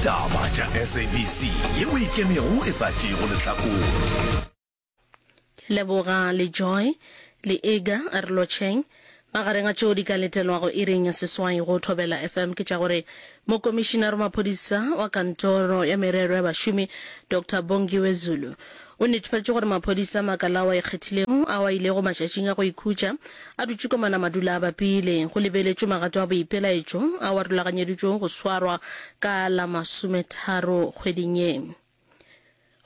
Taba tša SABC ye o ikemego e sa tšeego lehlakore. Ke leboga le Joy le Iga a re lotšheng. Magareng a tšeo di ka letelwago iring ya seswai go Thobela FM ke tša gore Mokomišinare wa Maphodisa wa Kantoro ya Merero ya Bašomi Doctor Bongiwe Zulu O netefatše gore maphodisa a makala ao a ikgethilego ao a ilego matšatšing a go ikhutša a dutše kwa Manamadula a bapile. Go lebeletšwe magato a boipelaetšo ao a rulaganyeditšwego go swarwa ka la masometharo kgweding ye.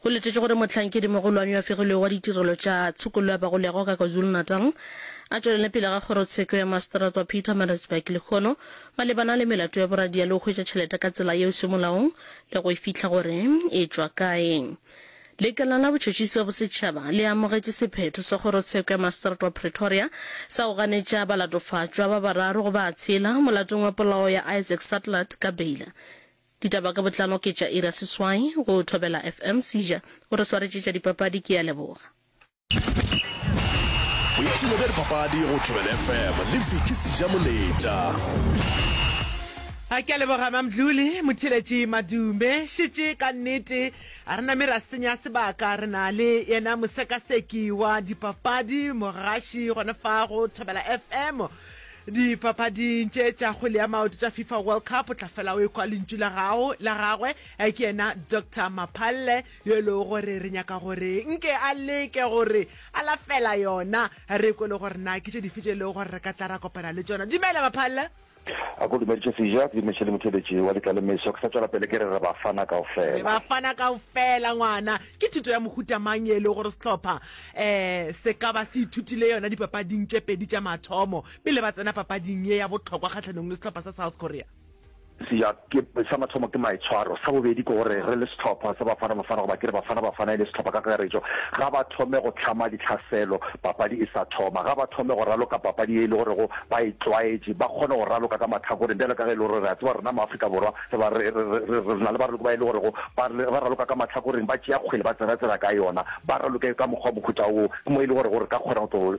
Go letetšwe gore mohlankedi-mogolwane yo a fegilwego wa ditirelo tša tshokollo ya bagolego ka KwaZulu-Natal a tšwelele pele ga kgorotsheko ya maseterata wa Pietermaritzburg lehono malebana le melato ya boradia le go hwetša tšhelete ka tsela yeo se molaong le go e fihla gore e tšwa kae. Lekala la Botšhotšhisi bja Bosetšhaba le amogetše sephetho sa Kgorotsheko ya Maseterata wa Pretoria sa go ganetša balatofatšwa ba bararo go ba tshela molatong wa polao ya Isaac Sutlat ka beila. Ditaba ka botlalo ke tša Ira Seswai go Thobela FM. Seija o re swaretše tša dipapadi ke a leboga. boipshino bja dipapadi go tšwebel fm le viki seja moletša a ke a leboga mamdluli motheletši madume šetše ka nnete a re name ra senya sebaka re na le yena mosekaseki wa dipapadi mogaši gona fa go thobela fm dipapading tše tša kgwele ya maoto tša fifa world cup o tla fela o ekwa lentšu la gago la gagwe ke yena dr maphalle yo e lego gore re nyaka gore nke a leke gore a lafela yona, re kwe le gore na ke tše dife tše e lego gore re ka tla ra kopana le tšona. Dumela, Maphalle. A ko dumediše Seja, ke dumediše le motheeletši wa Letlalemeso. Ke sa tšwela pele ke re re Bafana kaofela. Re Bafana kaofela, ngwana. Ke thuto ya mohuta mang ye e lego gore sehlopha um se ka ba se ithutile yona dipapading tše pedi tša mathomo pele ba tsena papading ye ya bohlokwa kgahlanong le sehlopha sa South Korea? Sa mathomo ke maitshwaro, sa bobedi ke gore re le sehlopha sa Bafana Bafana goba ke re Bafana Bafana e le sehlopha ka kakaretšo, ga ba thome go hlama ditlhaselo papadi e sa thoma, ga ba thome go raloka papadi ye e le gorego ba e tlwaetše, ba kgone go raloka ka mahlakoreng bjalo ka ge e le gore re a tseba rena maAfrika Borwa re na le baraloki ba e le gorego ba raloka ka mahlakoreng, ba tšea kgwele ba tsena-tsena ka yona, ba raloke ka mokgwa mohuta woo, ke mo e le gorego re ka kgona go tlo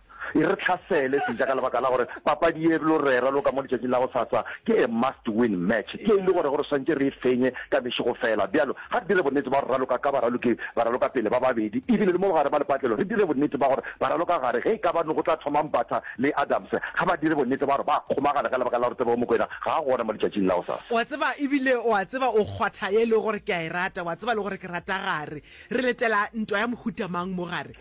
E re tlhasele seja ka lebaka la gore papadi ye e blo rera lo ka mo letšatšing la go sasa ke a must win match ye e le gore gore swantše re e fenye ka mešego fela. Byalo ga re dire bonnete ba gore raloka ka baraloki baraloka pele ba babedi ebile le mo bogare ba lepatlelo re dire bonnete ba gore baraloka gare ge e ka ba no go tla thoma Mbatha le Adams ga ba dire bonnete ba gore ba kgomagana ka lebaka la gore Tebogo Mokoena ga a gona mo letšatšing la go sasa. O a tseba ebile o a tseba o kgwatha ye e lego gore ke a e rata o a tseba le gore ke rata gare Re letela ntwa ya mohuta mang mo gare?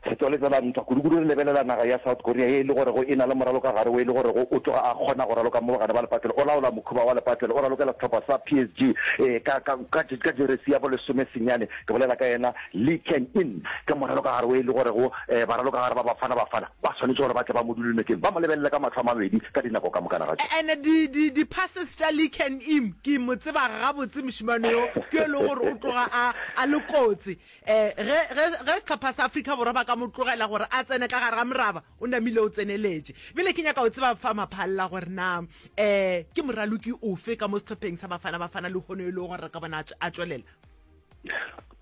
Setswalle tsa lantwa. Kudukudu re lebelela naga ya South Korea ye e le gorego e na le moralo ka gare wo e le gorego o tloga a kgona go raloka mo bogare ba lepatlelo, o laola mokhuba wa lepatlelo, o ralokela sehlopha sa PSG e ka, ka, ka, ka jeresi ya bolesome senyane, ke bolela ka yena Lee Kang-in, ke moralo ka gare wo e le gorego eh, baralokagare ba Bafana Bafana. Ba swanetše gore ba tle ba mo dule nokeng, ba mo lebelele ka mahlo a mabedi ka dinako ka mokana ga tšona. And di, di, di passes tša Lee Can Im, ke mo tseba gabotse mošemane yo, ke yo e lego gore o tloga a, a le kotsi. Eh, ge, ge, ge sehlopha sa Afrika Borwa ba ka mo tlogela gore a tsene ka gare ga moraba, o namile o tseneletše. Bjale ke nyaka go tseba fa Maphalla gore na, eh, ke moraloki ofe ka mo sehlopheng sa Bafana Bafana lehono yo e lego gore re ka bona a, a tšwelela?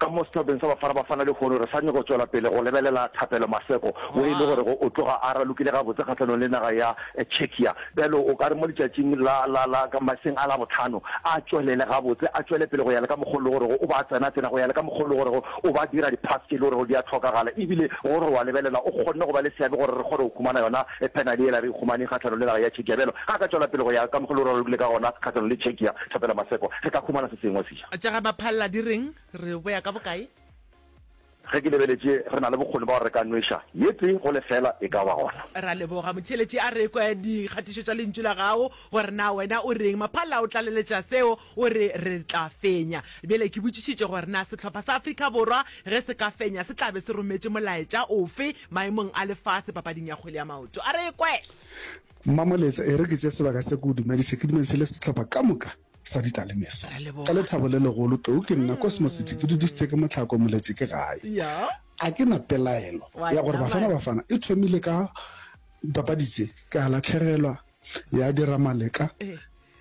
Ka mo sethopheng sa Bafana Bafana lehono re sa nyoko tšwela pele go lebelela Thapelo Maseko wo e le gore go o tloga a ralokile gabotse kgahlanong le naga ya Czechia. Bjalo o ka re mo letšatšing la, la, la, ka maseng a Labohlano a tšwelele gabotse, a tšwele pele go ya le ka mokgwa wo e le gorego o ba a tsena-tsena, go ya le ka mokgwa wo e le gorego o ba a dira di-pass tše e le gorego di a hlokagala ebile go re o a lebelela o kgonne go ba le seabe gore re kgone go humana yona penale yela re e humaneng kgahlanong le naga ya Czechia. Bjalo ge a ka tšwela pele go ya ka mokgwa wo e le gore o ralokile ka gona kgahlanong le Czechia, Thapelo Maseko, re ka humana se sengwe. Tša ga Maphallela di reng? Re boya ka bokae? Ge ke lebeletše, re na le bokgoni ba gore re ka nweša ye tee go lefeela, e ka ba gona. Ra leboga. Motheeletši a re kwa dikgatišo tša Lentšu la gago, gore na wena o reng. Maphallela o tlaleletša seo, o re, Re tla fenya. Bjale ke botšišitše gore na sehlopha sa Afrika Borwa ge se ka fenya se tla be se rometše molaetša ofe maemong a lefase papading ya kgwele ya maoto. A re ekwe! Mmamoletša, e re ke tšee sebaka se ke o dumediše, ke dumediše le sehlopha ka moka. sa ditalemeso. Ka lethabo le legolo, tlou ke nna, Kosmositi, ke dudišitše ke mohlako, moletše ke gae. A ke na pelaelo ya gore Bafana Bafana e thomile ka dipapadi tše, ke a lahlegelwa, ya dira maleka.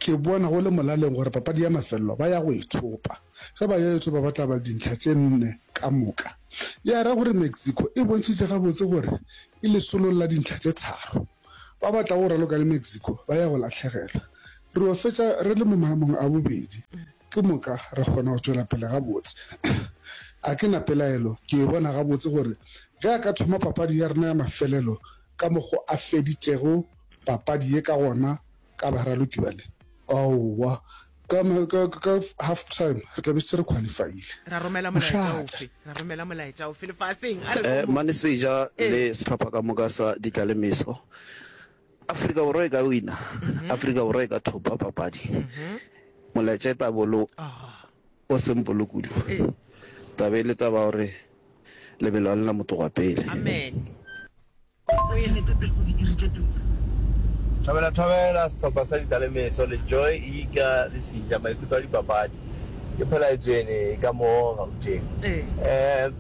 Ke bona go le molaleng gore papadi ya mafelelo ba ya go e thopa. Ge ba yo e thopa ba tla ba le dintlha tše nne ka moka. Ya ra gore Mexico e bontšhitše gabotse gore e lesolo la dintlha tše tharo. Ba ba tlago go raloka le Mexico ba ya go lahlegelwa. Re yo fetša re le mo maemong a bobedi, ke moka re kgona go tšwela pele gabotse. Ga ke na pelaelo, ke e bona gabotse gore ge a ka thoma papadi ya rena ya mafelelo ka mokgo a feditšego papadi ye ka gona Ka ba ra loki bale? Aowa, ka, ka, ka half time re tla be setse re qualifyile. Ra romela molaetša ofe? Ra romela molaetša ofe lefaseng? A re no mo. Mane Seja le sehlopha ka moka sa Ditlalemeso. Afrika Borwa e ka wina. Afrika Borwa e ka thopa papadi. Molaetša e tla bo lo o simple kudu. Taba e le taba ya gore lebelo ga le na motho wa pele. Amen. O e rete pele o di diritše tuku. Thobela Thobela, Sehlopha sa Ditalemeso le Joy Ika le Sija, Maikutlo a Dipapadi. Ke phela Ejene ka mo Gauteng. Ee.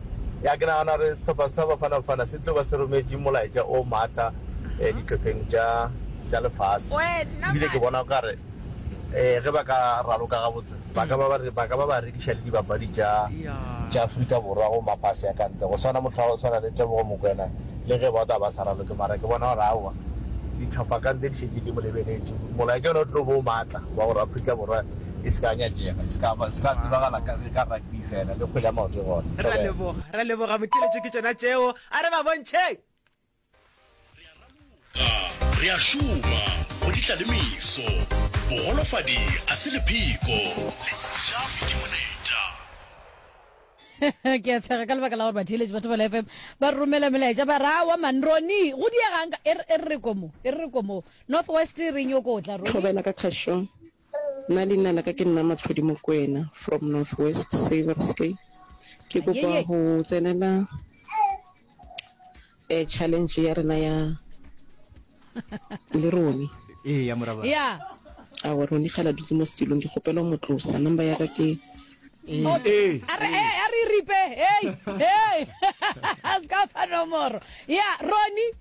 Ya, ke nagana gore sehlopha sa Bafana Bafana se tlo ba se rometše molaetša o matla dihlopheng tša tša lefase. Ebile ke bona o ka re ge ba ka raloka gabotse, Ba ka ba ba ka ba ba rekiša le dibapadi tša tša Afrika Borwa go mafase a ka ntle, go swana motho wa go swana le Tebogo Mokwena, le ge ba tla ba sa raloke. Mara ke bona gore aowa, dihlopha ka ntle di šetše di mo lebeletše. Molaetša ona o tlo ba o matla wa gore Afrika Borwa e se ka ya nyatšega, e se ka ba, se ka tsebagala ka ka rugby feela, le kgwele ya maoto e gona. Ra leboga, ra leboga Motšeletšo, ke tšona tšeo, a re ba bontšheng! Re a raloka, re a šoma go ditla le meso, bogolofadi a se lepheko, lesija ke moneja. ke a tshega ka lebaka la gore batheeletši ba thobela fm ba romela melaetša ba ra wa man roni go diegang e re re komo e re re komo north west re nyoko tla roni thobela ka kgašong Nna leina laka ke nna Matlhodi Mokwena from North West Saversdale. Ke kopa go tsenela um challenge ya rena ya le rone. Ee ya moraba. Yeah. Awa rone ga la dutse mo setilong ke kgopela mo tlosa number ya ka ke Okay. A re eh, a re ripe. Hey, hey. Ska fa nomoro. Yeah, Ronnie.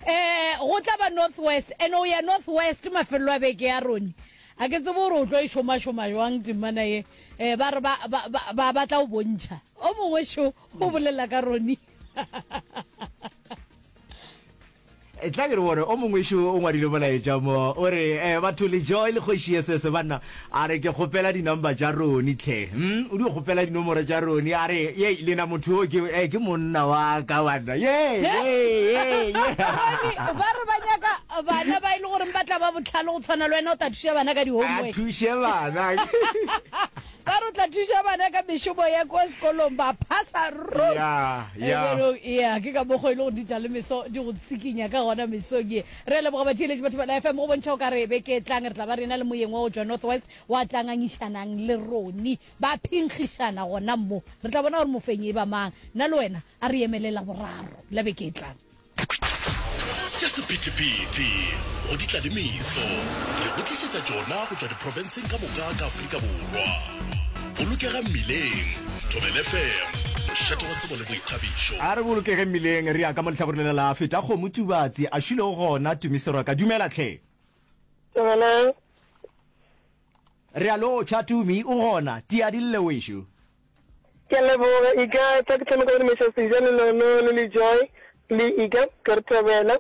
Ee, go tla ba North West, and o ya North West mafelelo a beke ya rone. A ke tsebo gore o tlo e šomašoma jwang temana ye. Eh, ba re ba, ba, ba, ba batla go bontšha. O mongwe šo, o bolela ka rone. E tla ke re bone o mongwe šo o ngwadile molaetša mo, o re, eh, batho lejo e le kgoši ye sese banna. A re, Ke kgopela di-number tša Ronnie hle. Hm, o di kgopela dinomoro tša Ronnie? A re, Yey, lena motho yo ke, eh, ke monna wa ka banna. Yey, yey, yey, yey. Ronnie, ba re ba nyaka bana ba e le goreng ba tla ba bohlale go tshwana le wena, o tla thuša bana ka di-homework. A thuše bana. Ba re o tla thuša bana ka mešomo ya kwa sekolong, ba phasa ruri. Ya, ya. Ee, ke ka mokgo e le gore ditalemeso di go tsikinya ka gona mesong ye. Re a leboga batšeeletši ba Thobela FM, go bontšha o ka re beke e tlang re tla ba re ena le moyeng wa go tšwa North West wa tla ngangišanang le roni. Ba phenkgišana gona mo, re tla bona gore mofenyi e ba mang. Nna le wena a re emele Laboraro la beke e tlang. Tša sephethephethe go ditlalemeso re go tlišetša tšona go tšwa diprofenseng ka moka ka Afrika Borwa. Bolokega Mmileng, Thobela FM, mošate wa tsebo le boithabišo. A re bolokege mmileng re ya ka mo lehlakoreng lela la feta kgomo Tubatse a šulego gona Tumi Seroka dumela tlhe. Dumelang. Re a lotšha Tumi o gona tia dille wešo. Ke a leboga e ka tsa ke thoma ka go dumešetsa Sija le Lolo le le Joy le Ika ke re thobela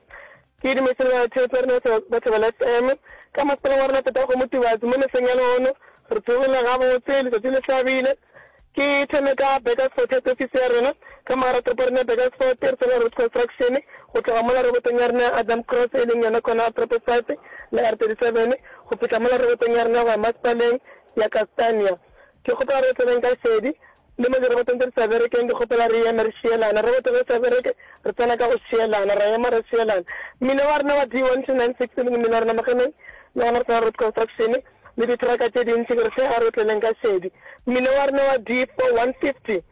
Ke dumetše batho eupša rena re batho ba Letšeng. Ka masepaleng wa rena Tatago Motubatsi mo mesong ya lehono, re tsogile gabotse, letšatši le hlabile. Ke thome ka Burgersfort Head Office ya rena, ka mogara toropo ya rena ya Burgersfort, re tsena Roots Construction, go tloga mola robotong ya rena ya Adam Cross e leng yona kona Proper Site le R37, go fihla mola robotong ya rena go ya Masepaleng ya Castania. Ke kgopela re tseneng ka šedi, le mo dirobotong tše di sa berekeng, ke kgopela re eme re šielana. Roboto ge e sa bereke, re tsena ka go šielana, ra ema ra šielana. Mmino wa rena wa D 1296 e leng mmino wa rena mo Gemeng, le gona re sa Road Construction le ditraka tše dintši, ke re hle a re tleneng ka šedi. Mmino wa rena wa D 4150.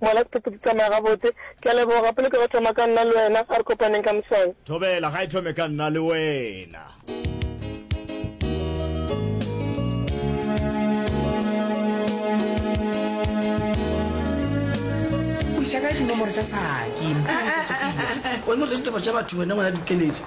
Ngwana Sepeto di tsamaya gabotse. Ke a leboga. Gape le ke go thoma ka nna le wena. A re kopaneng ka moswane. Thobela ga e thome ka nna le wena. O iša kae dinomoro tša saki? Mpule ke sopile. Wena o ja ditaba tša batho wena ngwana dikeletso.